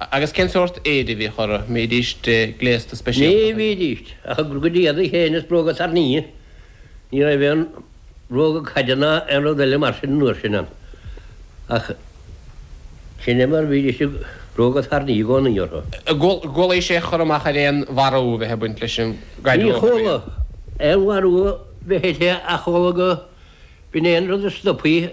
Agus cén sórt éide a bhíodh orthu? Mbídís gléasta speisialta? Ní bhídís, ach a gcuid éadaí féin is bróga tairní. Ní raibh aon bhróga caide ná aon rud eile mar sin an uair sin ann. Ach sin é mar bhídís bróga tairní i gcónaí orthu. Gcualaís aon chur amach ar aon mharú a bheith ag baint leis an gcaid riamh óg a bhí air. Ní chuala aon mharú a bheith aici ach amhlaidh go bhfuil aon rud a stopfaidh.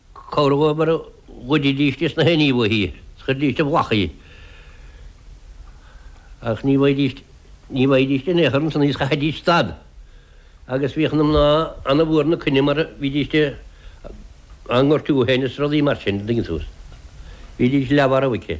Cabhróidh mar a ghoididís í sna hainí uaithi, is chuiridís i bhfolach í, ach ní bhfaighidís, ní bhfaighidís í in aon chor ansan is, chaithfidís stad. Agus bhíodh na mná an-mhór ina coinne mar bhídís á ngortú fhéin is rudaí mar sin, a dtuigeann tú. Bhídís leath mharbh aici.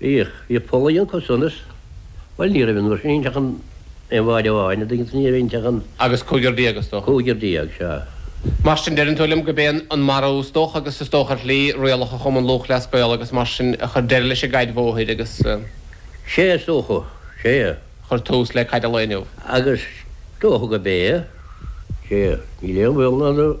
Bhíodh. Bhíodh Poli an cusa ionas. Bhuel, ní raibh an uair sin inti ach an aon bhád amháin, a' dtuigeann tú, ní raibh inti ach an. Agus cúigear déag, is dócha. Cúigear déag, sea. Mar sin, deireann tú liom go bé an marú, is dócha, agus is dócha ar shlí, rialacha Chumann Lúthchleas Gael agus mar sin a chuir deireadh leis an gcaid bhóthair agus. Sea, is dócha, sea. Chuir tús le caid an lae inniu. Agus is dócha go bé, sea. Níl aon bhaol ann.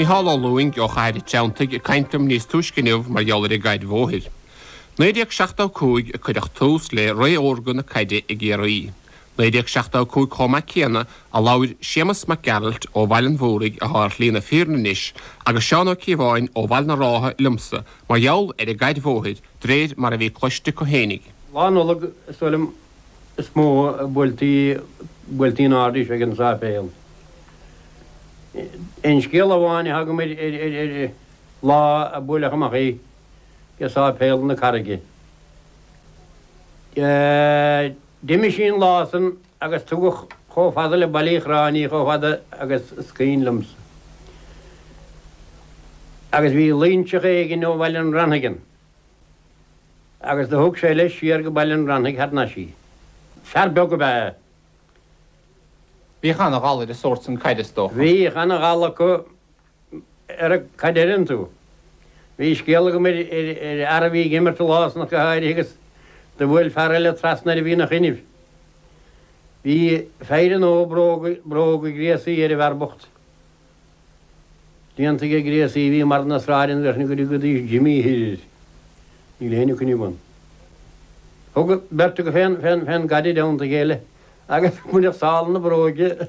Mícheál Ó Lúing ó Chathair an Treantaigh ag caint liom níos túisce inniu mar gheall ar an gcaid bhóthair. 1975 a cuireadh tús le ré órga na caide i gCiarraí. 1975 chomh maith céanna a labhair Séamus Mac Gearailt ó Bhaile an Mhúraigh atá ar Shlí na Fírinne anois agus Seán Ó Cíobháin ó Bhaile na Rátha liomsa mar gheall ar an gcaid bhóthair d'réir mar a bhí cloiste acu fhéinig. Lá Nollag, is dóigh liom, is mó a buailtí in airde í ag an sáipéal. Aon scéal amháin atá agam ar lá a buaileadh amach í ag sáipéal na Carraige. D'imigh sí an lá san. agus tugadh chomh fada le Baile Uí Chorráin í chomh fada agus is cuimhin liomsa. Agus bhí Loingseach éigin ó Bhaile an Reannaigh ann agus do thug sé leis siar go Baile an Reannaigh thar nais í. Fear beag ab ea é. Bhíodh ana-ghal ar an sórt san caide is dócha. Bhíodh ana-ghal acu ar a cad a deireann tú? Bhí scéal agam ar fhear a bhí ag imirt lá ach go háirithe agus do bhuail fear eile trasna air a bhí ina choinnibh. Bhí feidhre nua bróga gréasaí ar an bhfear bocht. Déanta aige gréasaí a bhí i mbarr na sráide a bheadh ina gcuireadh go dtí Jimí thoir air. Níl éinne coinnibh ann. Thug beirt acu fén gcaid i dteannta a chéile agus baineadh sál na bróige.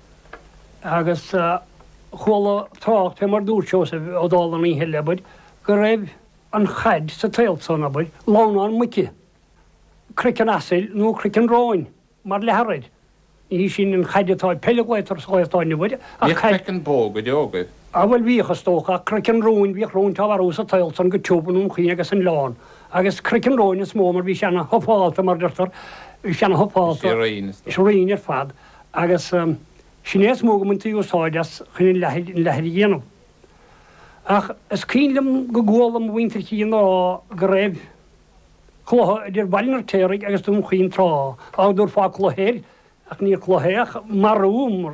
agus chuala trácht fé mar dúirt Seosamh Ó Dálaigh an oíche eile, abair, go raibh an chaid sa tsaol san, abair, lamhnán muice, croiceann asail nó croiceann róin mar leathar air. Ní hí sin an chaid atá ag peil a ghlaotar sa Ghaeltacht inniu uirthi ach caid. Bhíodh croiceann bó go deo agaibh. Á bhuel bhíodh, is dócha, ach croiceann róin, bhíodh róinte á marú sa tsaol san go tiubh, i nDún Chaoin agus san Oileán. Agus croiceann róin is mó mar bhí sé ana thufálta mar deirtear, bhí sé ana thufálta, is righin, is righin ar fad. agus sin é is mó go mbaintí úsáid as chun an leathair a dhéanamh. Ach is cuimhin liom go gcuala mo mhuintir féin á rá go raibh cluiche idir Baile an Fhirtéaraigh agus Dún Chaoin tráth, dá dtabharfá cluiche air, ach ní cluiche é ach marú mar.